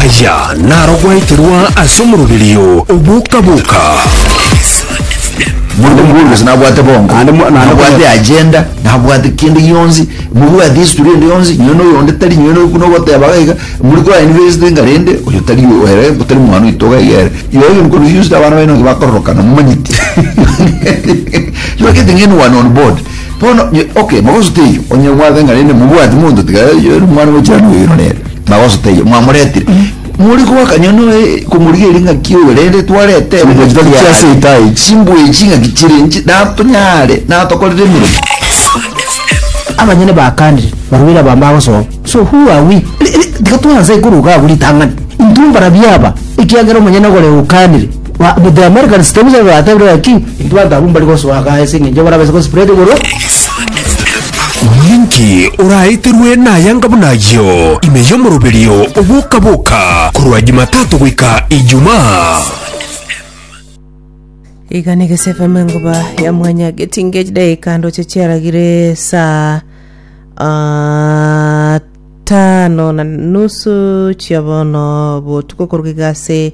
Aya narogweterwa ase omoroberio oboka-boka. Mono mokonguru gose nabwate bongo Naende mo- naende nabwate konya- agenda nabwate kende gionsi mobwate history ende yonsi nyowe na oyonde tari nyowe na oyokuna ogoteba iga iga muri kwa university enga rende oyo tari oyo ere tari mwana oito iga iga ere igo you confused abana baino nki bakororokana momanyeti you are getting anyone on board Bono, ye, okay, magoso teiyo, onye mwabenge naende mobwati monto tiga yori mwana bwa jirani oyo oiro nere, magoso teiyo, mwamoretire. Mori goakanya noe komorigeria ng'aki oyo rende twarete ere Chimbuechi ng'aki tari chia ase yare. itaaichi. Chimbuechi ng'aki chire inche natonyare natokorire emeremo. Abanyene bakaanire, Barwire aba mbagosoa. So who are we? Ri- ri- Tiga twanse korwa iga abwo ritang'ani. Intwe mbarabwo aba, ekiagera omonyene ogore okaanire. Ba- but the americans tebisa igo batebire baki intwe bantu abwo mbari gosoa gaa ase eng'encho bono abase gospread igoro Omonyanki oraeterwe nayanga buna ayio ime y'omoroberio oboka-boka korwa Jumatatu goika Ijumaa. iga na egese fm engoba ya mwanya getinge chidaika ndoche chiaragire saa ah, tano na nusu chiabono botuko koruga igase